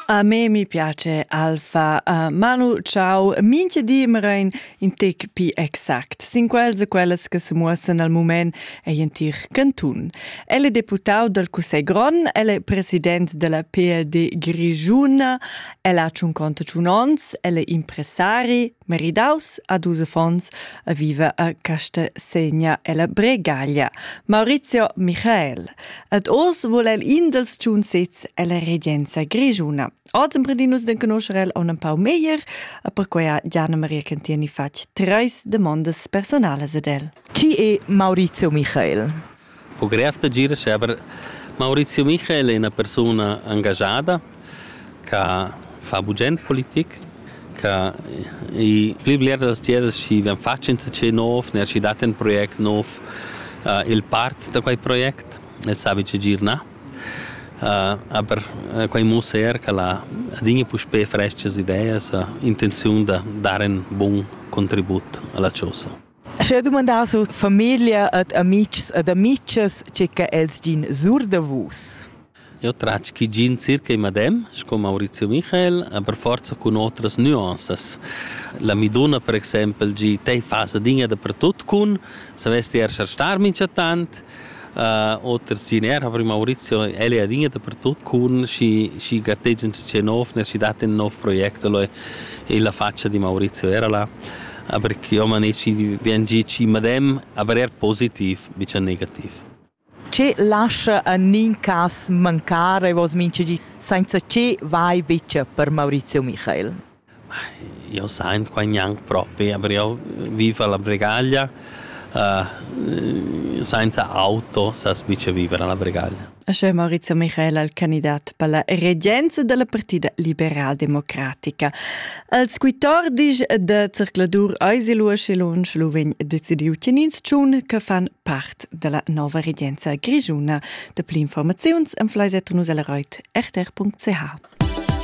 A me mi piace Alfa. Uh, Manu, ciao. Minchia di mrein in tec pi exact. Sin quels e quellas che se muossen al moment ei in tir cantun. El è deputau dal Cussegl Gron, el è president della PLD Grigiuna, el ha un conto un ons, el è impresari, Meridaus a dus affons a viver a Castasegna ella Bregaglia, Maurizio Michael. Ed oz vul el in dels tschun sezs ella regenza grischuna. Oz emprendimus de conoscer el un pau meglier, e perquei ha Gianna Maria Cantieni fatg treis demandas personalas ad el. Chi è Maurizio Michael? po grev da girescher, aber Maurizio Michael è una persuna engagiada che fa bugent politik, che i pli bler da tiers chi vegn fatg insatge nov, ner chi dat ün project nov, uh, il part da quei project, el sabi che gir na. Uh, aber uh, quei mussa er che la adinha puspé freschas ideas, intenziun da dare un bun contribut alla chosa. Scha dumandas our famiglia ad amics ed amicas che cha els gin sur da vus? Eu tratg chi gin circa il medem sco Maurizio Michael, aber forza cun otras nuanzas. La Miduna per exaimpel gi, tei fas adinga dapertut cun, savess ti erscher star minchatant, Oter tginer ha prüm Maurizio el è adina dapertut cun schi schi gartegia ün tschè nov, ner schi dat ün nov project elo illa fatscha di Maurizio era là, aber ch'io maneci vegn gi chi madem, aber eir positiv, bicha negativ. Che lascha in nin cas mancar e vos mincha di, sainza che vai bicha per Maurizio Michael? Jeu saint quai gnanc propi, aber jeu viv alla Bregaglia, sainza auto sast mica viver alla Bregaglia. E sche Maurizio Michel al candidat per la regenza dalla partida liberaldemocratica. Als quittor disch de circladur eis il Uschelunsch lu vegn decidiu tgenins tschun che fan part dalla nova regenza grischuna. De pli informaziuns en fleis nus el reit rtr.ch.